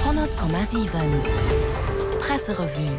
100,7 Presserevue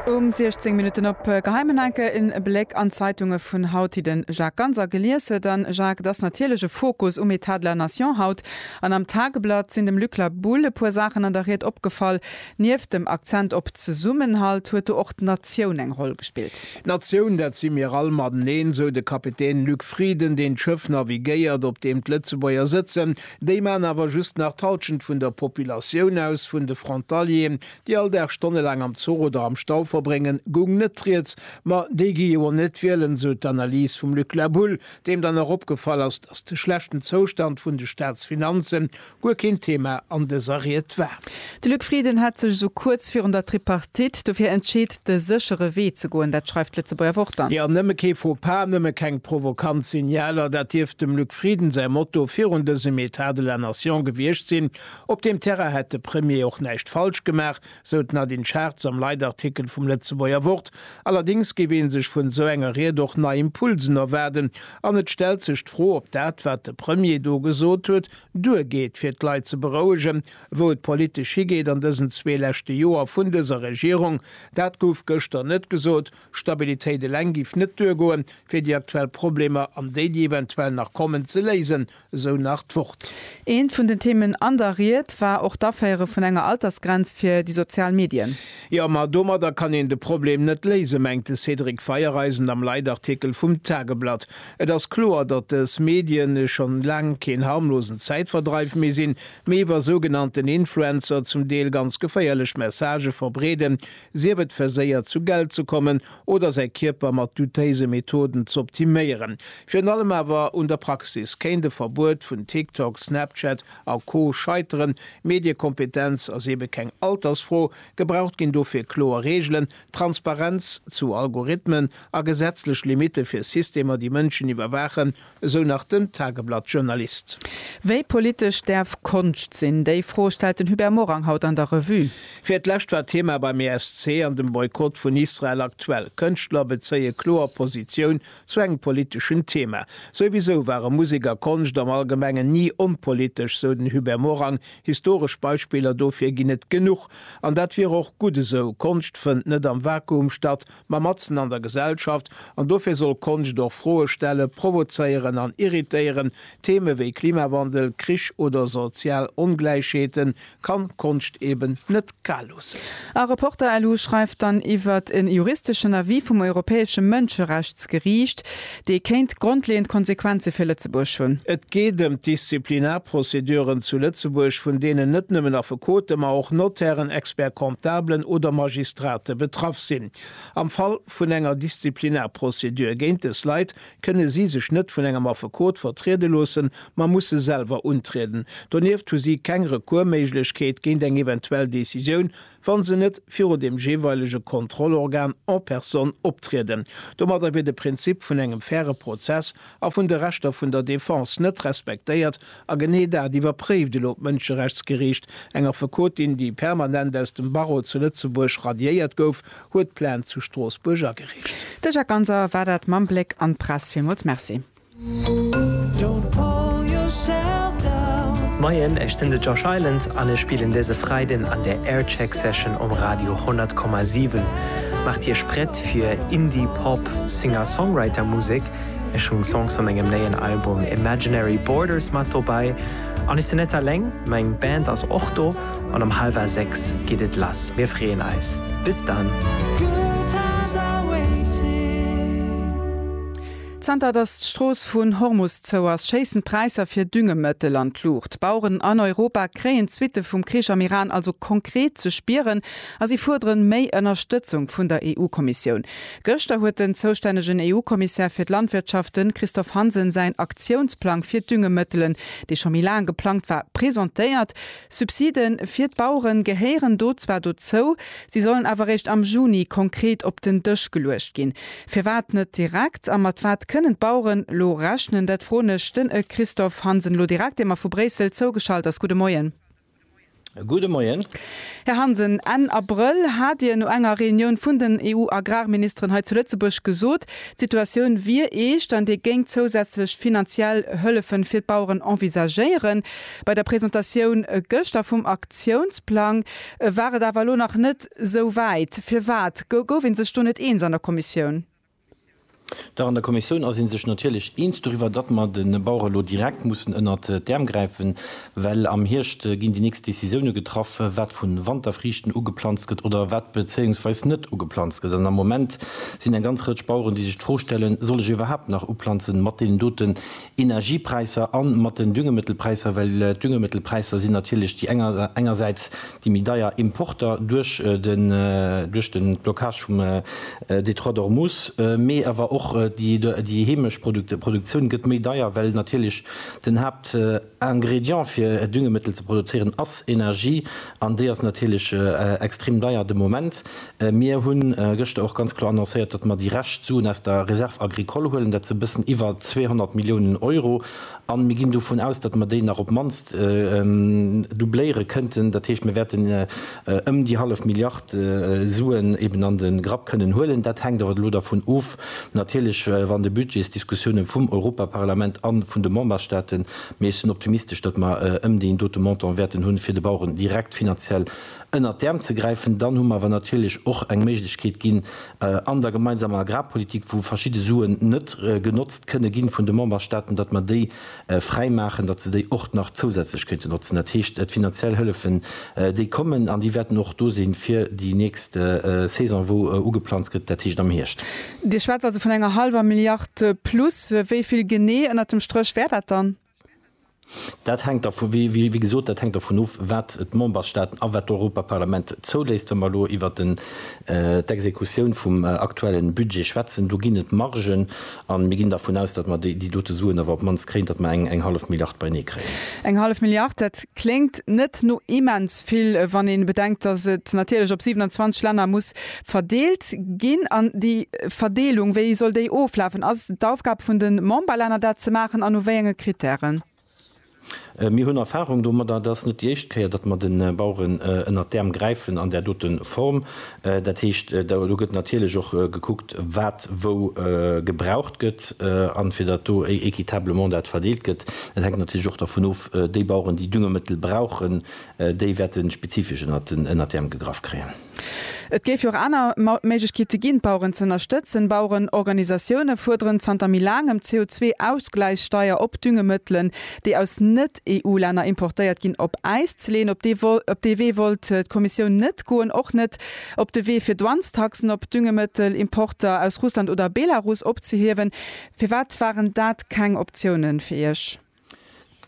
Um 16 Minutten op Geheimen Enke en Bléck an d'Zeitunge vun haut, déi den Jacques Ganser gelies huet. A Jacques, et ass natierlech e Fokus um État de la Nation haut. An am Tageblatt sinn dem Luc La Boule e puer Saachen an der Ried opgefall. Nieft dem Akzent op Zesummenhalt huet do och d'Natioun eng Roll gespillt. D'Natioun, dat si mir all mateneen, sou de Kapitän Luc Frieden, deen d'Schëff navigéiert, op deem d'Lëtzebuerger sëtzen. Déi maan awer just nach d'Halschent vun der Populatioun aus, vun de Frontalieren, déi all Dag stonnelaang am Zuch oder am Stau verbréngen, goung net rieds. Ma déi gi jo net wielen, esou d'Analys vum Luc La Boule, deem dann och opgefall ass, datt de schlechten Zoustand vun de Staatsfinanzen guer keen Thema an dëser Ried war. De Luc Frieden hätt sech esou kuerz virun der Tripartite dofir entscheet, de séchere Wee ze goen. Dat schreift d'Lëtzebuerger Wort dann. Jo, nëmme kee Faux-Pas, nëmme keng provokant Signaler, dat dierft dem Luc Frieden säi Motto virun dësem Etat de la Nation gewiescht sinn. Op deem Terrain hätt de Premier och näischt falsch gemaach, sou d'Nadine Schartz am Leitartikel vum Lëtzebuerger Wort. Allerdéngs géif ee sech vun esou enger Ried och nei Impulsen erwaarden. An et stellt sech d'Fro, ob dat, wat de Premier do gesot huet, duergeet, fir d'Leit ze berouegen, Wou et politesch higeet an dësen zwee leschte Joer vun dëser Regierung, dat gouf gëschter net gesot. Stabilitéit eleng géif net duergoen, fir déi aktuell Problemer an déi, déi eventuell nach kommen, ze léisen, esou nach d'Wort. Eent vun den Themen an der Ried war och d'Aféiere vun enger Altersgrenz fir déi sozial Medien. Jo, ma domadder kann een de Problem net léisen, mengt de Cédric Feiereisen am Leitartikel vum Tageblatt. Et ass kloer, datt dës Medien schonn laang keen harmlosen Zäitverdreif méi sinn. Mee wa sougenannten Influencer zum Deel ganz geféierlech Messagë verbreeden, sief et verséiert zu Geld ze kommen oder säi Kierper mat dutéise Methoden z'optiméieren. Virun allem awer un der Praxis kéint e Verbuet vun TikTok, Snapchat a Co scheiteren. Mediekompetenz ass eebe keng Altersfro, gebraucht ginn dofir kloer Reegelen, Transparenz zu Algorithmen a gesetzlech Limitte fir Systemer déi Mënschen iwwerwaachen Esou nach den Tageblatt-Journalist. Wéi politesch däerf Konscht sinn? Déi Fro stellt den Hubert Morang haut an der Revue. Fir d'lescht war Thema beim ESC an dem Boykott vun Israel aktuell. Kënschtler bezéie kloer Positioun zu engem politeschen Thema. Souwisou ware Musek a Konscht am Allgemengen ni onpolitesch, sou den Hubert Morang. Historesch Beispiller dofir ginn et genuch. An dat wier och gutt esou. Konscht fënnt net am Vakuum statt. ma matzen an der Gesellschaft, an dofir soll Konscht och Froe stellen, provozéieren an irritéieren. Theme wéi Klimawandel, Krich oder sozial Ongläichheete kann d'Konscht eben net kal loossen. A Reporter LU schreift dann iwwert e juristeschen Avis vum Europäesche Mënscherechtsgeriicht, Déi kéint grondleeënd Konsequenze fir Lëtzebuerg hunn. Et geet ëm d'Disziplinarprozeduren zu Lëtzebuerg, vun deenen net nëmmen Affekote, ma och Notairen, Expert-comptablen oder Magistrate betraff sinn. Am Fall vun enger Disziplinarprozedur géint dës Leit kënne si sech net vun engem Affekot vertriede loossen, ma musse selwer untrieden. Donieft hu si keng Recours-Méiglechkeet géint eng eventuell Decisioun wa se net viru dem jeeweilege Kontrollorgan en personne optrieden. Domadder wier de Prinzip vun engem faire Prozess a vun de Rechter vun der Defense net respektéiert, a genee dat iwwerpréift elo d'Mënscherechtsgeriicht. Eng Affekotin, déi permanent aus dem Barreau zu Lëtzebuerg radiéiert gouf, huet Plainte zu Stroossbuerg agereecht. De Jacques Ganser war dat mam Bléck an d'Press. Villmools Merci. Moien, ech sinn de Josh Island an ech spillen dëse Freiden an der Aircheck Session um Radio 100,7. Maacht Iech prett fir Indie Pop Singer-Songwriter Musek. Ech hunn Songs vu mengem néien Album Imaginary Borders mat dobäi. An ech sinn net aleng, meng Band ass och do. An um hallwer 6 geet et lass. Mir freeën eis. Bis dann! Zanter datt d'Strooss vun Hormus zou ass, schéissen d'Präisser fir Düngemëttel an d'Luucht. D'Baueren an Europa kréien d'Suitte vum Krich am Iran also konkret ze spieren a si fuerderen méi Ënnerstëtzung vun der EU-Kommissioun. Gëschter huet den zoustännegen EU-Kommissär fir d'Landwirtschaft, den Christophe Hansen, säin Aktiounsplang fir Düngemëttelen, dee scho méi laang geplangt war, presentéiert. Subside fir d'Baueren gehéieren do zwar dozou, si sollen awer réischt am Juni konkret op den Dësch geluecht ginn. Firwat net direkt a mat wat kënnen d'Baueren elo rechnen? Dat froen ech den Christophe Hansen elo direkt, dee mer vu Bréissel zougeschalt ass. Gudde Moien. Gudde Moien. Här Hansen, Enn Abrëll hat Dir no enger Reunioun vun den EU-Agrarministeren hei zu Lëtzebuerg gesot, d'Situatioun wier eescht an Dir géingt zousätzlech finanziell Hëllefe fir d'Baueren envisagéieren. Bei der Presentatioun gëschter vum Aktiounsplang war et awer elo nach net esou wäit. Firwat gouf ee sech do net eens an der Kommissioun? Dach, an der Kommissioun ass ee sech natierlech eens doriwwer, datt mer de Bauere elo direkt mussen ënnert d'Äerm gräifen, well am Hierscht ginn déi nächst Decisioune getraff, wat vu Wanterfriichten ugeplanzt gëtt oder wat bezéiungsweis net ugeplanzt gëtt. An am Moment sinn eng ganz Rëtsch Baueren, déi sech d'Fro stellen, Soll ech iwwerhaapt nach uplanzen mat deenen doten Energiepräisser an mat den Düngemittelpräisser, well d'Düngemittelpräisser sinn natierlech déi enger engersäits déi méi deier Importer duerch den duerch den Blocage vum Détroit d'Ormuz, mee awer och déi déi heemesch Produkt Produktioun gëtt méi deier, well natierlech den Haapt Ingrédient fir Düngemittel ze produzieren ass Energie an déi ass natierlech extrem deier de Moment. Mir hunn gëschter och ganz kloer annoncéiert, datt mer déi Rescht Suen aus der Réserve agricole huelen, dat sinn e bëssen iwwer 200 Milliounen Euro, a mir ginn dovun aus, datt mer déi nach op d'mannst doubléiere kënnten. Dat heescht, mir wäerten ëm déi hallef Milliard Suen eben an de Grapp kënnen huelen. Dat hänkt awer elo dervun of natierlech, wann de Budgetsdiskussioune vum Europaparlament a vun de Memberstaaten, mee ech sinn optimistesch, datt mer ëm deen dote Montant wäerten hunn, fir de Baueren direkt finanziell ënnert d'Äerm ze gräifen. Dann hu mer awer natierlech och eng Méiglechkeet ginn an der gemeinsamer Agrarpolitik, wou verschidde Suen net genotzt kënne gi vun de Memberstaaten, datt mer déi fräi maachen, datt se déi och nach zousätzlech kéinte notzen. Dat heescht, d'finanziell Hëllefen, déi kommen an déi wäerten och do sinn, fir déi nächst Saison, wou ugeplanzt gëtt, dat heescht am Hierscht. Dir schwätzt also vun enger hallwer Milliard plus. Wéi vill genee ënnert dem Stréch wär dat dann? Dat hänkt dervu, wéi gesot, dat hänkt dervun of, wat d'Membersstaaten a wat d'Europaparlament zouléisst. Wa mer elo iwwert d'Exekutioun vum aktuelle Budget schwätzen, do ginn et Margen, a mir ginn dervun aus, datt mer déi dote Suen awer op d'mannst kréien, datt mer eng hallef Milliard beinee kréien. Eng hallef Milliard, dat kléngt net no immens vill, wann ee bedenkt, datt et natierlech op 27 Länner muss verdeelt ginn an déi Verdeelung, wéi soll déi oflafen? Ass et d'Aufgab vun de Memberlänner dat ze maachen an no wéi enge Kritären? Mir hunn Erfahrung domadder. Et ass net déi éischt Kéier, datt mer de Baueren ënnert d'Äerm gräifen an där dote Form. Dat heescht, do gëtt natierlech och gekuckt, wat wou gebraucht gëtt an fir datt do équitablement dat verdeelt gëtt. Dat hänkt natierlech och dervun of, déi Baueren, déi Düngemëttel brauchen, déi wäerte spezifesch ënnert d'Äerm gegraff kréien. Et géif jo och aner Méiglechkeete ginn, d'Baueren ze ënnerstëtzen. Bauerenorganisatioune fuerderen zanter méi laangem d'CO2-Ausgläichssteier op Düngemëttelen, déi aus Net-EU-Länner importéiert ginn, op Äis ze leeën. Op dee Wee wollt d'Kommissioun net goen. Och net op de Wee, fir Douanestaxen op Düngemëttelimporter aus Russland oder Belarus opzehiewen. Firwat waren dat keng Optiounen fir Iech?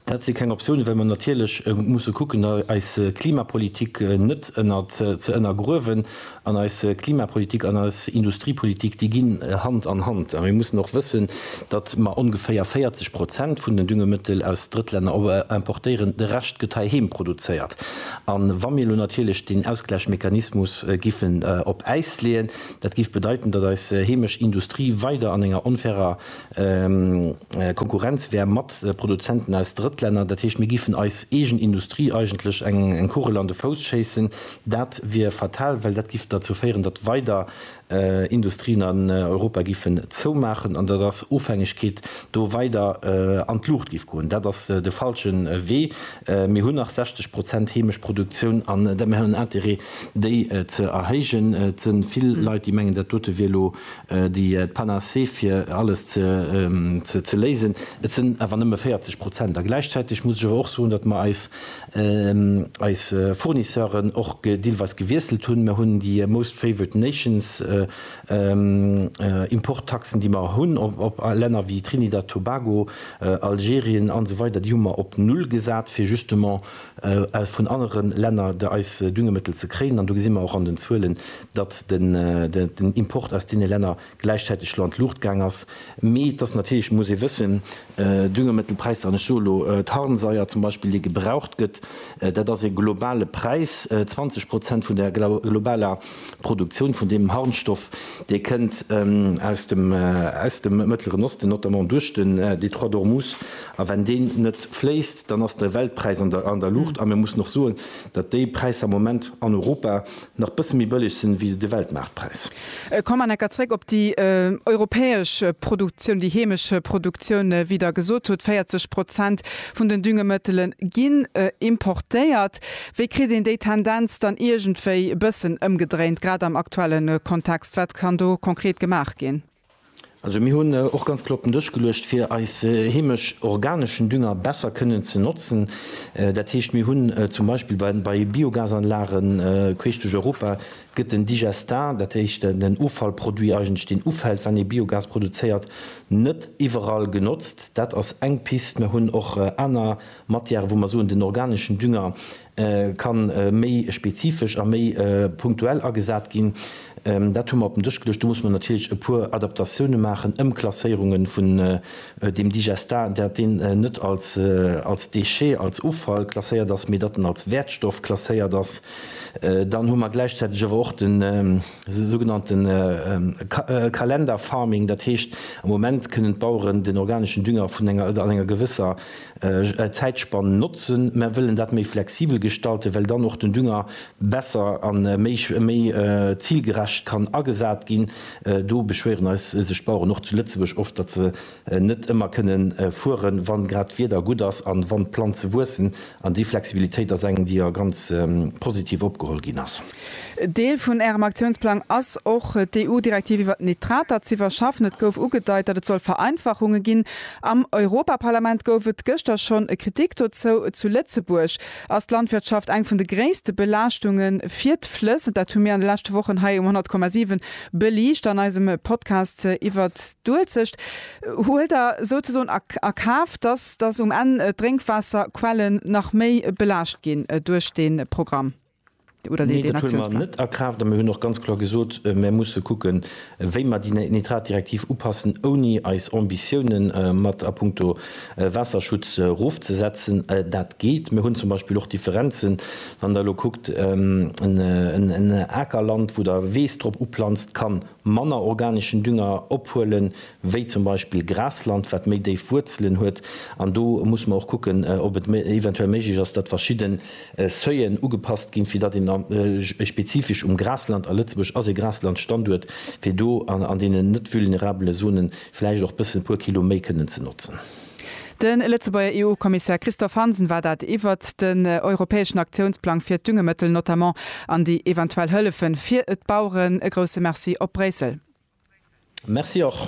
Dat si keng Optiounen, well mer natierlech musse kucken, eis Klimapolitik net ze ënnergruewen. An eis Klimapolitik an eis Industriepolitik, déi ginn Hand an Hand. A mir mussen och wëssen, datt mer ongeféier 40 Prozent vun den Düngemëttel aus Drëttlänner importéieren, de Rescht gëtt heiheem produzéiert. A wa mir elo natierlech deen Ausgläichmechanismus giffen op Äis leeën, dat géif bedeiten, datt eis heemesch Industrie weider an enger onfairer Konkurrenz wär mat Produzenten aus Drëttlänner. Dat heescht, mir géifen eis eegen Industrie eigentlech eng Kugel an de Fouss schéissen. Dat wier fatal, well dat géif derzou féieren, datt weider Industrien an Europa géifen zoumaachen an datt eis Ofhängegkeet do weider an d'Luucht géif goen. Dat ass de falsche Wee. Mir hunn nach 60 Prozent heemesch Produktioun an mir hunn en Interêt, déi ze erhéijen. Et si vill Leit, déi mengen, dat dote wier elo déi d'Panacée fir alles ze léisen, et sinn awer nëmme 40 Prozent. A gläichzäiteg muss ech awer och soen, datt mer eis Fournisseuren och deelweis gewiesselt hunn. Mer hunn déi most favored nations Importtaxen, déi mer hunn op Länner wéi Trinidad Tobago, Algerien, an esou weider, déi hu mer op null gesat, fir justement aus vun anere Länner der eis Düngemittel ze kréien. An do gesi mer och an den Zuelen, datt den Import aus deene Länner gläichzäiteg elo an d'Luucht gaang ass. Mee et ass natierlech, muss ee wëssen, Düngemittelpräisser, an ech soe elo d'Harnsaier zum Beispill, dee gebraucht gëtt, dat ass e globale Präis, 20 Prozent vun der globaler D'Produktioun vun deem Harnstoff, dee kënnt aus dem aus dem Mëttleren Osten, notamment duerch den Détroit d'Ormuz. A wenn deen net fléisst, dann ass de Weltpräis an der an der Luucht. A mir mussen och soen, datt déi Präisser am Moment an Europa nach bësse méi bëlleg sinn, wéi de Weltmaartpräis. Ech kommen enker zréck op déi europäesch Produktioun, déi heemesch Produktioun. Wéi Der gesot hutt, 40 Prozent vun den Düngemëttele ginn importéiert. Wéi kritt een déi Tendenz dann iergendwéi e bëssen ëmgedréint, grad am aktuelle Kontext? Wat kann do konkret gemaach ginn? Also mir hunn och ganz vill op den Dësch geluecht, fir eis heemesch organeschen Dünger besser kënnen ze notzen. Dat heescht, mir hunn zum Beispill bei Biogasanlage queesch duerch Europa gëtt den Digestat, dat heescht den Offallproduit eigentlech, deen ufält, wann ee Biogas produzéiert, net iwwerall genotzt. Dat ass eng Pist. Mir hunn och aner Matière, wou mer soen, den organeschen Dünger ka méi spezifesch a méi punktuell agesat ginn. Dat hu mer op den Dësch geluecht. Do muss mer natierlech e puer Adaptatioune maachen, Ëmklasséierunge vun deem Digestat, dat deen net als Déchet, als Offall klasséiert ass, mee datt en als Wäertstoff klasséiert ass. Dann hu mer gläichzäiteg awer och de sougenannte Kalenderfarming, dat heescht, am Moment kënnen d'Baueren den organeschen Dünger vun enger, an enger gewësser Zäitspann notzen, mä wëllen dat méi flexibel gestalten, well dann och den Dünger besser a méi zilgerecht kann agesat ginn. Do beschwéieren eis sech d'Baueren och zu Lëtzebuerg oft, datt se net ëmmer kënne fueren, wann grad d'Wieder gutt ass an wann d'Planze wuessen. An déi Flexibilitéit ass eng, déi a ganz positiv opgeholl ginn ass. Deel vun Ärem Aktiounsplang ass och, d'EU-Direktiv iwwert d'Nitrater z'iwwerschaffen. Et gouf ugedeit, datt et soll Vereinfachunge ginn, Am Europaparlament gouf et gëschter schonn e Kritik dozou. Zu Lëtzebuerg ass d'Landwirtschaft eng vun de gréisste Belaaschtunge fir d'Flëss. Dat hu mir an de leschte Wochen hei um 100,7 beliicht an eisem Podcast iwwer d'Uelzecht. Huelt Der souzesoen a Kaf, dass um Enn d'Drénkwaasserquellen nach méi belaascht ginn duerch dee Programm? Nee, dat huele mer net a Kraaft. A mir hunn och ganz kloer gesot, Mir musse kucken, wéi mer déi Nitratdirektiv upassen, ouni eis Ambitiounen mat a puncto Waasserschutz erofzesetzen. Dat geet. Mir hunn zum Beispill och Differenzen, wann Der elo kuckt, en Akerland, wou Der Weess drop uplanzt, ka manner organeschen Dünger ophuelen, wéi zum Beispill Grasland, wat méi déif Wuerzelen huet. An do muss mer och kucken, ob et eventuell méiglech ass, dat verschidde. Seuilen ugepasst ginn, fir datt een spezifesch um Grasland, a Lëtzebuerg ass ee Graslandstanduert, fir do an deenen net vulnerabele Zone vläicht och bëssen e puer Kilo méi kënnen ze notzen. De Lëtzebuerger EU-Kommissär Christophe Hansen war dat iwwert den europäeschen Aktiounsplang fir d'Düngemëttel notamment an déi eventuell Hëllefe fir d'Baueren. E grousse Merci op Bréissel. Merci och.